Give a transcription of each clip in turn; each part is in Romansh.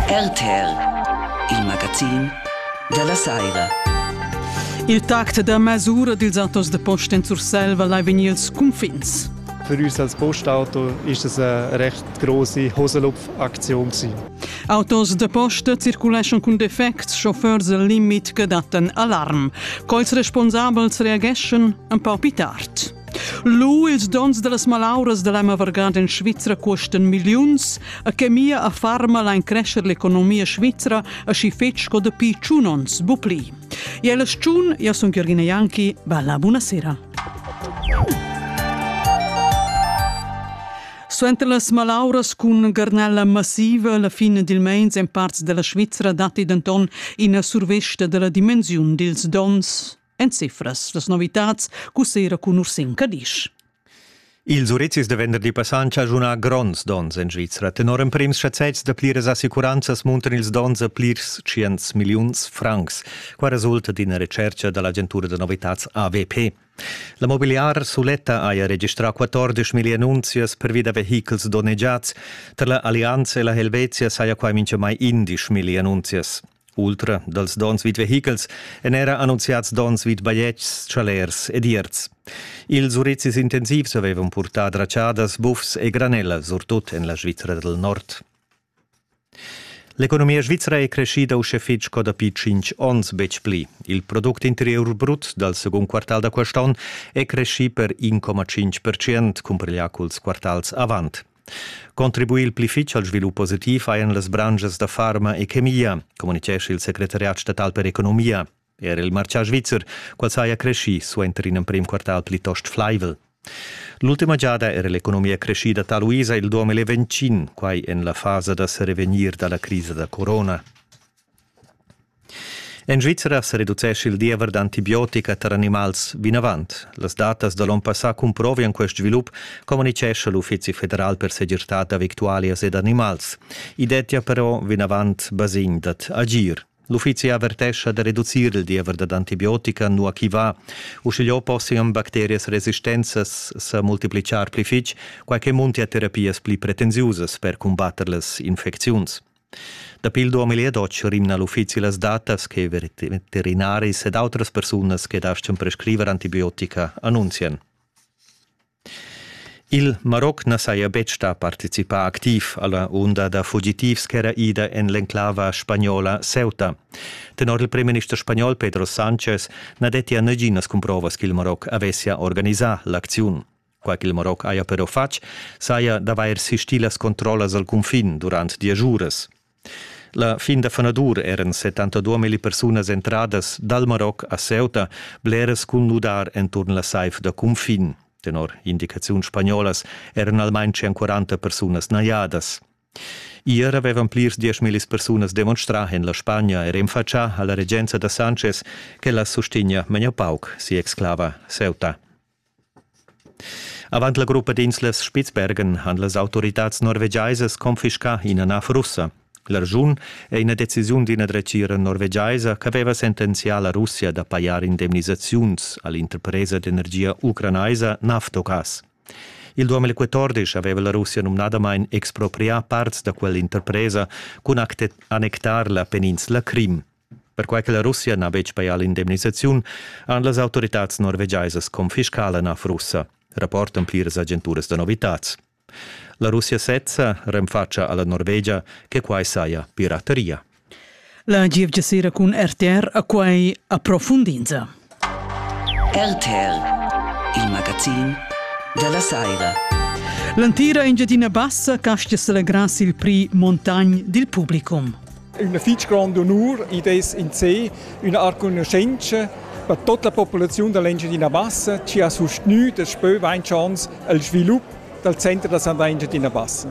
RTL, il magazin dalla saira. Il tact da masura dils autos de posta en Surselva lai vegnir els cunfins. Für uns als Postauto ist das eine recht große Hosenlupf-Aktion Autos de posta circuleschan cun defects, chauffeurs al limit che dattan alarm. Quels responsabels reageschan un pau più tard. Lu ils dons dallas malauras da Lema Vargant en Svizra cuostan milliuns, a che mia a farma lain crescer l'economia svizra aschi fetg sco dapi tschun onns, bu pli. E la schun, io sun Chiorghina Ianchi, bella buonasera. Suenter las malauras cun garnella massiva la fin dil meins en parts della Svizra datti denton ina survesta della dimensiun dils dons. En cifras las novitads cussera cun Ursin Cadisch. Ils urizis da venderdi passà han chaschunà gronds donns en Svizra. Tenor emprims chazzets da pliras assicuranzas muntan ils donns a plirs 100 milliuns francs. Qua resulta d'ina recerca da l'agentura da novitads AVP. La mobiliar suletta haja registrà 14 million annunzias pervi da vehichels donnegiads. Tar la Allianza e la Helvetia saja quai mintgamai 11 million annunzias. Ultra dals dons vid vehichels èn era annunziads dons vid bajetgs, chalers ed ierts. Ils urizis intensivs avevan purtà dratschadas, buffs e granella, surtut en la Svizra dal Nord. L'economia svizra è crescida uschè fitg sco dapi tschintg onns betg pli. Il product interior brut dal secund quartal da quest onn è creschì per 1,5%, cumpareglià culs quartals avant. Contribuir il pli fitg al svilup positiv hajan las branschas da farma e chemia, communitgescha il secretariat statal per economia. Er il martgà svizzer, qual saja creschì suenter in emprim quartal plitost flaivel. L'ultima giada era l'economia creschida taluisa il duom e quai en la fasa da serevegnir dalla crisa da corona. En Svizra sa reducescha il diever d'antibiotica tar animals vinavant. Las datas da l'onn passà cumprovian quest svilup, communitgescha l'Uffizi federal per segirtad da victualias ed animals. I dettia però vinavant basegn dad agir. L'uffizi avertescha da reducir il diever dad antibiotica, nua ch'i va. Uschigliò possian bacterias resistenzas sa multiplicar pli fitg, quai che muntia terapias pli pretensiusas per cumbatter las infecziuns. Dapi il 2012 rimna l'uffizi las datas che veterinaris ed outras persunas che dastgan prescriver antibiotica annunzian. Il Maroc na saja betg stà participà activ alla unda da fugitivs ch'era ida en l'enclava spagnola Ceuta. Tenor il premierminister spagnol Pedro Sanchez na dettia naginas cumprovas ch'il Maroc avessia organisà l'acziun. Qua ch'il Maroc haja però fatg, saja d'avair sistì las controllas al cunfin durant diesch uras. La fin da fanadur eran 72 milli persunas entradas dal Maroc a Ceuta bleras cun nudar enturn la saiv da cunfin. Tenor indicaziun spagnolas eran almain 140 persunas najadas. Ier avevan plirs diesch millis persunas demonstrà en la Spagna e renfatschà a la regenza da Sanchez ch'ella sustegnia meglio pauc si exclava Ceuta. Avant la gruppa d'inslas Spitzbergen han las autoritads norvegiaisas confiscà ina nav russa. L'arschun è ina decisiun d'ina dretgira norvegiaisa ch'aveva sentenzià la Russia da pajar indemnisaziuns a l'interpresa d'energia ucranaisa Naftogas. Il 2014 aveva la Russia numnadamain exproprià parts da quell'interpresa cun annectar la peninsula Crim. Perquai che la Russia n'ha betg pajà l'indemnisaziun, han las autoritads norvegiaisas confiscà la russa, rapportan pliras agenturas da novitads. La Russia sezza renfatscha a la Norvegia che quai saja pirateria. La gievgia sera cun RTR a quai approfundinza. RTL, il magazin della saira. L'antira Engiadina Bassa castgia celegrass il prix Montagnes dil publicum. Un fitg grand honor id es in sé üna arcugnuschenza per tutta la populaziun dell'Engiadina Bassa chi ha sustgnü daspö vainch ans il svilup dal center da sandà Engiadina Bassa.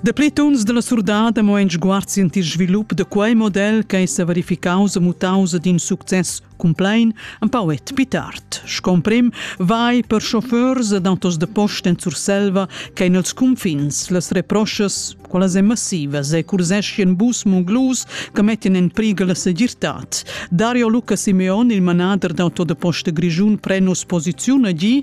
Dapli tuns della surdada mo en sguard il svilup da quei model che è verificaus e mutaus ad in success Cumplain empau et pit art, scomprim, vai per chauffeurs ed autos de post en Surselva che in els confins las reproschas, qualas e massivas e curseschien bus munglus che mettin en priga la segirtad. Dario Luca Simeon, il manader d'auto de poste grigiun, pren posiziun a gi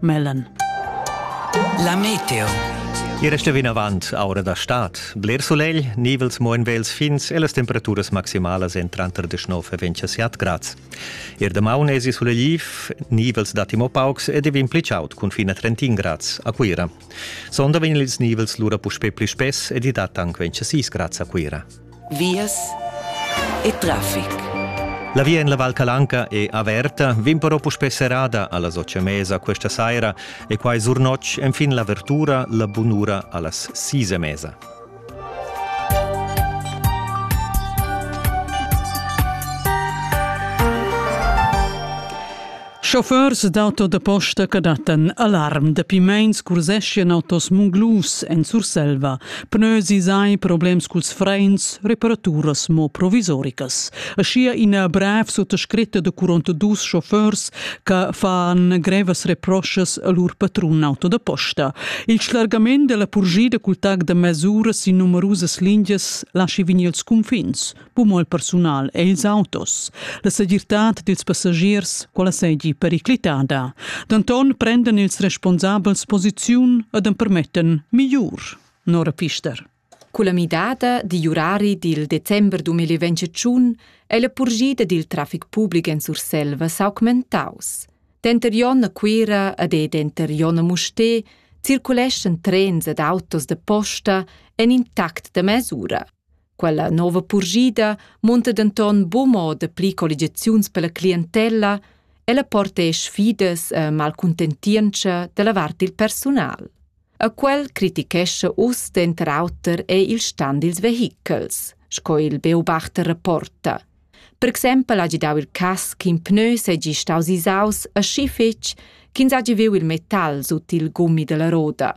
Mellen. La Meteo. Iera sta vinavant aura da stad. Bler sulegl, nivels mo en vels fins e las temperaturas maximalas en tranter 19 e 27 grads. Ier damaun esi sulegliv, nivels datti mo paucs ed vegn pli chaud cun fin a 31 grads a Cuira. Sonda vegn ils nivels lura puspè pli spess ed i dat anc 26 grads a Cuira. vias e traffic. La via en la Val Calanca è averta, vin però puspè serrada a las otg e mesa questa saira e quai sur notg enfin l'avertura la bunura a las sis e mesa. Chauffeurs d'auto da posta che dattan alarm dapi meins curseschian autos munglus en Surselva. Pneusi sai problems culs freins, reparaturas mo provisoricas. Aschia ina brev suttascritta da 42 chauffeurs che fan grevas reproschas a lur patrun auto da posta. Il schlargament della purgida cul tag da mesura sin numerusas lingias lasci vegnir els cunfins, Cumol persunal è ils autos. La segirtad dils passagiers, quella seigi periclitada. Danton prenden ils responsabels posiziun ed empermetten migliur. Nora Pister. Culla midada digl urari dil december 2021 è la purgida dil traffic public en Surselva s'augmentaus. Denter Jon a Cuira ed denter Jon a Musté circuleschan trens ed autos de posta en intact de mesura. Quella nova purschida munta denton buca mo dapli colligiaziuns per la clientella, ella porta sfidas e malcuntentientscha dalla vart dil persunal. A quel critichescha uss denter auter ei il stan dils vehichels, sco il Beobachter rapporta. Per exempel hagi dau il cass ch'in pneu seigi staus isaus aschi fetg ch'ins hagi viu il metal sut il gummi dalla roda.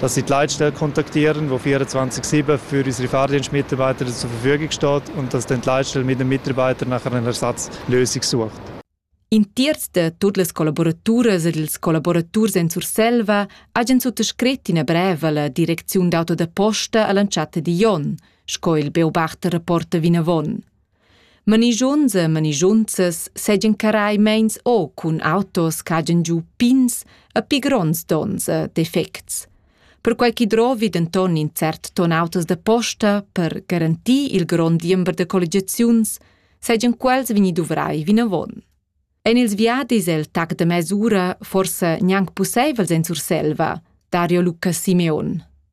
dass sie die Leitstelle kontaktieren, die 24-7 für unsere Fahrdienstmitarbeiter zur Verfügung steht und dass dann die Leitstelle mit den Mitarbeitern nachher eine Ersatzlösung sucht. In terz da tutte le collaborature ed ils collaboraturs en Surselva hagen suttascrit ina brev alla direcziun d'auto da posta alla entschatta di Jon, sco il beobachter rapporta vinavon. Manischunza e manischunzas seigien carai meins o cun autos cagen giu pins e pi gronds tons e defects. Perquai chi drovi denton in cert ton autos da posta per garantir il grond diember de colligiaziuns, seigien quels vegni duvrai vinavon. En ils viadis el tac de mesura forse gnanc pusseivel en Surselva, Dario Luca Simeon.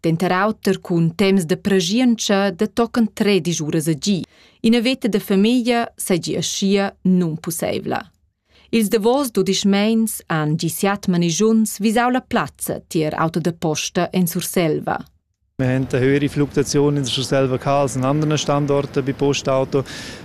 Denter auter cun temps de preschientscha de tochen tredisch uras a gi. Ina veta de famiglia seigi aschia nunpusseivla. Ils davos dudisch meins han gi siat manigiuns visau la plazza tier auto de posta en Surselva. Wir haben eine höhere Fluktuation in der Surselva als an anderen Standorten bei Postauto.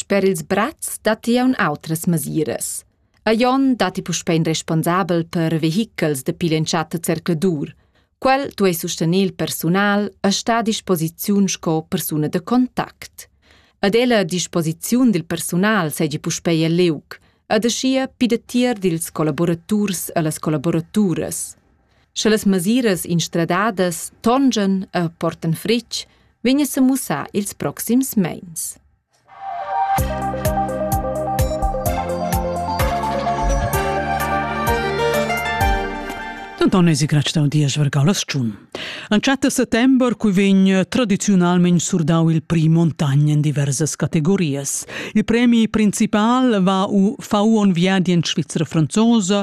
Sper ils brats datti aunc outras masiras. A Jon datti puspei in responsabel per vehichels dapi l'entschatta zercladur. Quel duei sustener il persunal e star a disposiziun sco persuna da contact. Ad ella a disposiziun dil persunal seigi puspei el liug, ed aschia pida tier dils collaboraturs e las collaboraturas. Sche las masiras instradadas tongian e portan fritg, vegn a mussar ils proxims meins. Denton esi grestau dies vargalas tschun. An chat settember cui vegn tradiziunalment surdau il pri montagn in diversas categorias. Il premi principal va u Fauon Viadi in Svizzera franzosa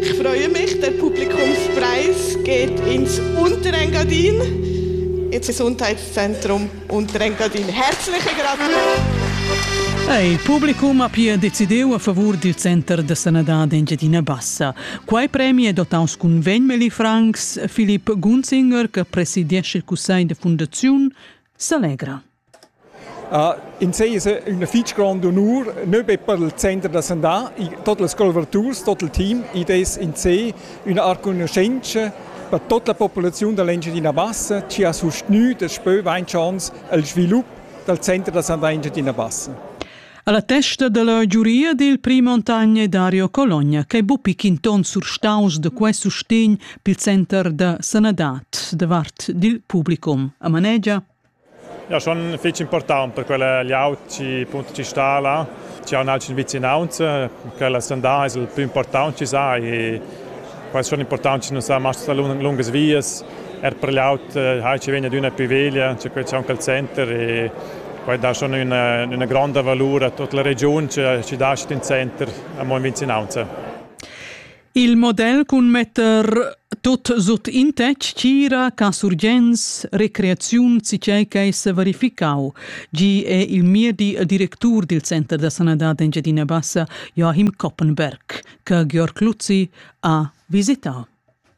Ich freue mich, der Publikumspreis geht ins Unterengadin, ins Gesundheitszentrum Unterengadin. Herzliche Gratuleerung! Il pubblico ha pia decidiu a favur dil Center da sanadad Engiadina Bassa. Quei premi è dotaus cun 20 mili francs. Philipp Gunzinger, che presidiesce il cussegl de fundazione, s'allegra. Uh, in sei es üna fich granda onur, nö be per il center da sandà, tot las collaboraturs, tot il team, id es in sé üna art conoscenza per tutta la populaziun da l'Engiadina Bassa, chi ha sustgnü daspö vainch ans il svilup dal center da sandà Engiadina Bassa. Alla testa della giuria dil prim montagna Dario Cologna che bupi quinton surstaus de quest sustegn pil center da sanadad davart dil publicum a manegia Ja schon fich important per quella glieud chi punto chi sta là, chi haun aunch ün vicinaunza, quella sandà es il plü important chi sa e quai es schon important chi nun sa mast sta lungas vias. Er per glieud hai chi vegn adüna pi veglia, cha quai c'è aunc al center e quai dà schon üna üna gronda valur a tuot la regiun chi chi dascht in center amo in vicinaunza. Il model cun metter tot sut in tec tgira ca surgens recreaziun cicei che se verificau. Gi è il mia di directur dil Center da Sanadad Engiadina Bassa, Joachim Koppenberg, che Georg Luzzi ha visitau.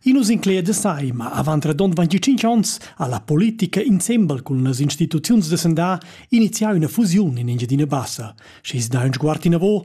Inus incleia de sai, ma avant redond 25 ons ha la politica insembel cun las instituziuns de sendà iniziau una fusiun in Engiadina Bassa. Schis da un sguart inavo,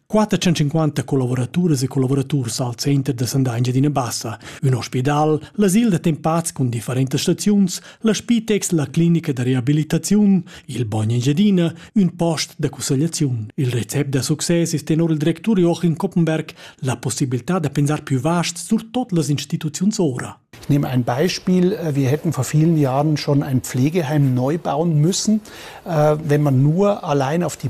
450 collavoraturas e collaboraturs al center da Sanda Engiadina Bassa, ün ospidal, l'asil da tempats cun differentas staziuns, la Spitex, la clinica da reabilitaziun, il Bagn Engiadina, ün post da cussegliaziun. Il recept da success es tenor il directur Joachim Koppenberg la possibilità da pensar più vast sur tot las instituziuns ora. Ich nehme ein Beispiel. Äh, wir hätten vor vielen Jahren schon ein Pflegeheim neu bauen müssen, äh, wenn man nur allein auf die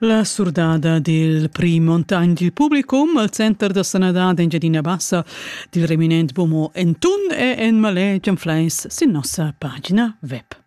La surdada dil prim Montagn dil publicum al Center da sanadad Engiadina Bassa dil reminent Bomo en tun e en maletg en fleis sin nossa pagina web.